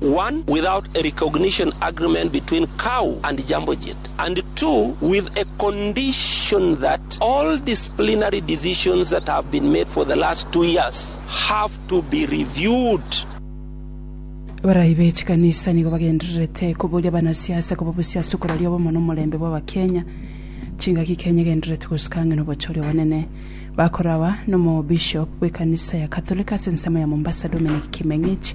one, without a recognition agreement between KAU and Jambo Jet, and two, with a condition that all disciplinary decisions that have been made for the last two years have to be reviewed. Abarai be chikanisa nigo bagendererete koboria abanasiasa koba obosiasi okoraria obomo na omorembe bw'Abakenya. Chingaki Kenya egendererete gosuka ang'e na obochori obonene. Bakora aba na Omobishop bw'ekanisa ya Catholic ase ensemo ya Mombasa Dominic Kimeng'ich.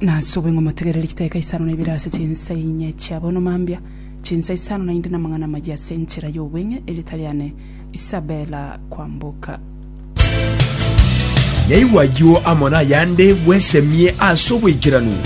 Nase oboing'o motegerere chiteka isano na ibere ase chinsa inye chia bono mambia, chinsa isano naende namang'ana amayia ase enchera y'obweng'e, erieta riane Isabella kwamboka. Yaigwa ayio amo nayande bwesemie ase obwaikeranu.